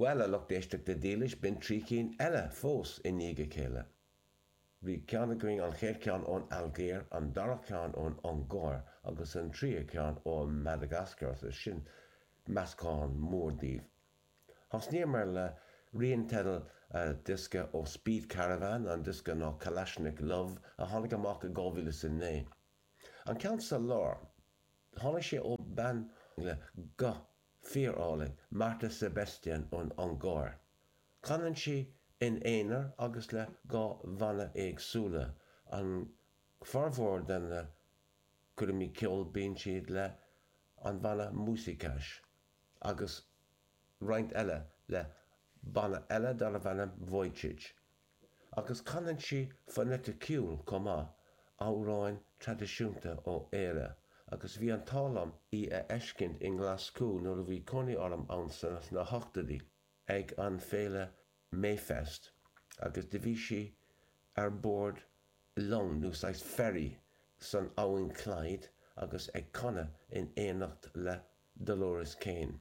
Bhuel, a lucht éisteachta dhílis, b'in trí chinn eile fós i ndiaidh a chéile. Bhí ceann againn, an chéad cheann ón Ailgéir, an dara ceann ón Ungáir agus an tríú ceann ó Mhadagascar agus sin meascán mór daoibh. Thosnaíomar le rian teideal a diosca ó Speed Caravan, an diosca ná Kalashnik Love a tháinig amach i 2009. An ceann sa lár. Tháinig sé ó bean le guth fíorálainn, Márta Sebestyén ón Ungáir. Canann sí in aonar agus le dhá bhanna éagsúla, an formhór de na coirmeacha ceoil bíonn siad le an bhanna Muzsikás agus roinnt eile le banna eile darbh ainm Vujicsics. Agus canann sí foneiticiúil chomh maith, amhráin traidisiúnta ó Éire, agus bhí an t-ádh liom í a fheiscint i nGlaschú nuair a bhí cónaí orm ann sna hochtóidí ag an féile Mayfest agus do bhí sí ar bord long nó saghas ferry san abhainn Clyde agus ag canadh in éineacht le Dolores Keane.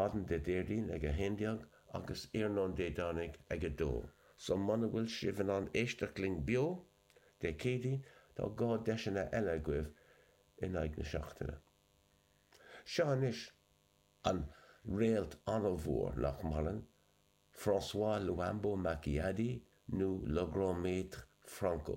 Maidin Dé Déardaoin ag 11 agus iarnóin Dé Domhnaigh ag 2. So muna bhfuil sibh in ann éisteacht linn beo Dé Céadaoin tá dhá deiseanna eile agaibh in aghaidh na seachtaine. Seo anois. An réalt an-mhór, nach maireann, François Luambo Makiadi nó Le Grand Maître Franco.